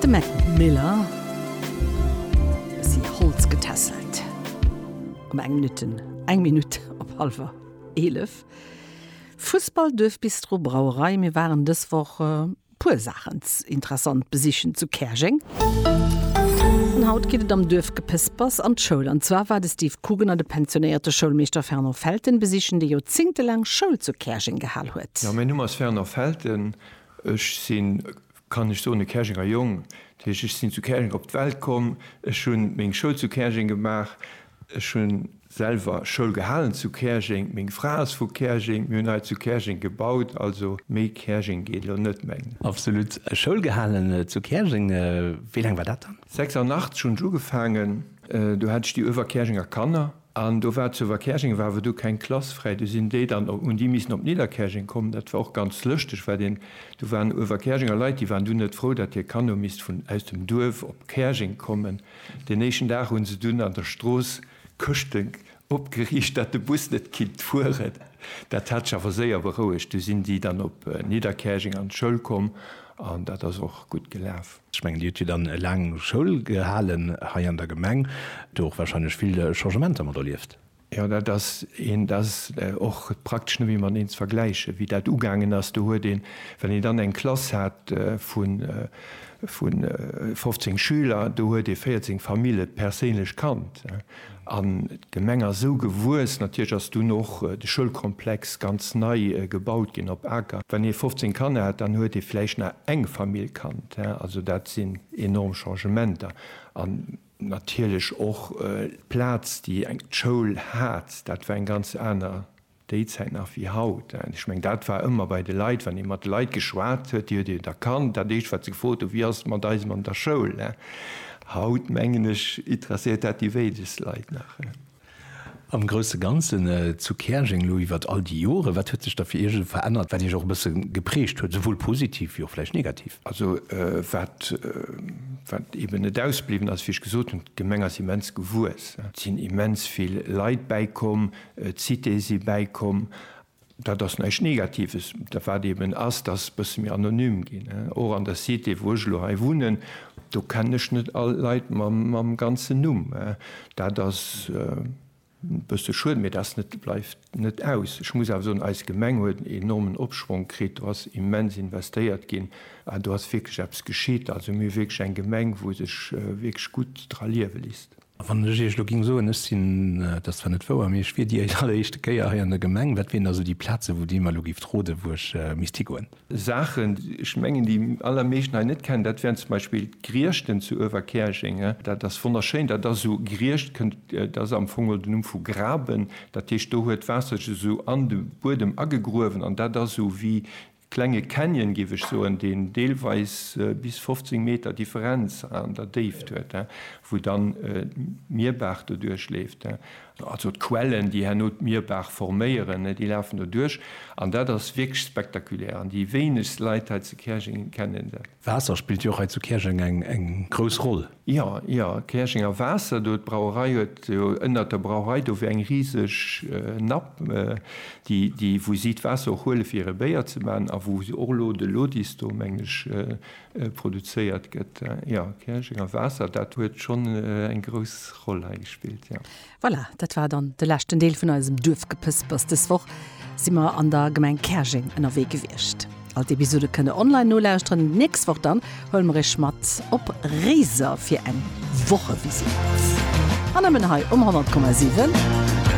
De Mac Miller si Holz getässelt um eng Minutte, eng Minutt op hallwer eelef. Fussball, Duerfbistro, Brauerei, mir waren dës Woch e puer Saachen interessant besichen zu Käerjeng. An haut geet et am Duerfgepespers an d'Schoul. An zwar war de Steve Coogan an de pensionéierte Schoulmeeschter Fernand Felten besichen, dee joerzéngtelaang Schoul zu Käerjeng gehal huet. Ja, mäin Numm ass Fernand Felten Ech sinn, kann ech soen, e Käerjenger Jong. Dat heescht, ech sinn zu Käerjeng op d'Welt komm, ech hu meng Schoul zu Käerjeng gemaach, ech hu selwer Schoul gehalen zu Käerjeng, meng Fra ass vu Käerjeng, mir hunn hei zu Käerjeng gebaut. Also méi Käerjeng geet elo net méi. Absolut. Schoul gehalen zu Käerjeng, wéi laang war dat dann? 86 hunn ech ugefaangen. Do hat ech déi Uewerkäerjenger Kanner An do war zu Verkäerjeng war awer du keng Klass fräi, du sinn déi dann op, hunn déi missen op Nidderkäerjeng kommen. Dat war och ganz lëschteg, well deen, do waren Uewerkäerjenger Leit, déi waren dunn net frou, datt hir Kanno misst vun, aus dem Duerf op Käerjeng kommen. Deen éischten Dag hunn se dunn an der Strooss Këschte opgeriicht, datt de Bus net kinnt fueren. Dat hat sech awer séier berouegt, du sinn déi dann op Nidderkäerjeng an d'Schoul komm an dat ass och gutt gelaf. Ech mengen, Dir hutt jo dann laang Schoul gehalen hei an der Gemeng, do och warscheinlech vill Changementer mat erlieft. Jo, dat ass een, dat ass och praktesch net méi mateneen ze vergläichen, wéi dat ugaangen ass. Do huet een, well een dann eng Klass hat vu 15 Schüler, do huet ee 14 Famille perséinlech kannt. An d'Gemeng ass esou gewuess. Natierlech ass dunn och de Schoulkomplex ganz nei gebaut ginn op Aker. Wann ee 15 Kanner hat, dann huet ee vläicht nach eng Famill Kand. Also dat sinn enorm Changementer. An natierlech och d'Plaz, déi d'Schoul hat, dat war eng ganz aner. Déi Zäit nach wéi haut. Ech meng, dat war ëmmer bei de Leit, wann ee mat de Leit geschwat huet, déi huet een erkannt. Dat éischt, wat se gefrot hunn, Wéi ass et mat eisem an der Schoul? Haut, mengen ech, interesséiert dat déi wéinegst Leit nach. Am grousse Ganzen zu Käerjeng elo iwwert all déi Joren, wat huet sech da fir Iech verännert, wat Iech och e bësse geprägt huet, souwuel positiv wéi och vläicht negativ? Also wat eeben net ausbliwwen ass, wéi ech gesot hunn, D'Gemeng ass immens gewuess. Et sinn immens vill Leit bäikomm, D'Cité si bäikomm. Dat ass näischt Negatives. Dat wat eeben ass, dat ass e bësse méi anonym ginn. Och an der Cité, wou ech elo hei wunnen, do kennen ech net all Leit mam ganzen Numm. Dat ass e bësse schued, mee dat bleift net aus. Ech muss awer soen, eis Gemeng huet en enormen Opschwonk kritt. Do ass immens investéiert ginn an do ass wierklech eppes geschitt. Also mir hu wierklech eng Gemeng, wou sech wierklech gutt dra liewe léisst. A wann ech Iech elo géing soen, ech sinn, et ass zwar net wouer, mee ech wier déi alleréischte Kéier hei an der Gemeng, wat wieren da sou déi Plazen, wou Dir mer elo géift roden, wou ech misst higoen? Saachen, ech mengen, déi allermeeschten hei net kennen, dat wären zum Beispill d'Griechten zu Överkäerjeng. Dat ass wonnerschéin. Dat ass esou, Griecht kënnt, dat ass am Fong geholl den Numm vu graben. Dat heescht, do huet d'Waasser sech esou an de Buedem agegruewen an dat ass esou wéi Klenge Canyon, géif ech soen, deen deelweis bis 15 Meter Differenz an der Déift huet, wou dann d'Mierbaach doduerch leeft. Also d'Quellen, déi herno d'Mierbaach forméieren, déi lafen doduerch. An dat ass wierklech spektakulär. An déi wéinegst Leit hei zu Käerjeng kennen dat. Waasser spillt jo och hei zu Käerjeng eng grouss Roll. Jo, jo, Käerjenger Waasser do, d'Brauerei huet jo ënnert der Brauerei do wär eng riseg Napp, déi, wou si d'Waasser och huele fir hire Béier ze maachen a wou och elo de Lodis do, mengen ech, produzéiert gëtt. Jo, Käerjenger Waasser, dat huet schonn eng grouss Roll hei gespillt, jo. Voilà, dat war dann de leschten Deel vun eisem Duerfgepëspers. Dës Woch si mer an der Gemeng Käerjeng ënnerwee gewiescht. All d'Episode kënnt der online nolauschteren. D'nächst Woch dann huele mer iech mat op Réiser fir eng Wochevisitt. An nëmmen hei um 100,7.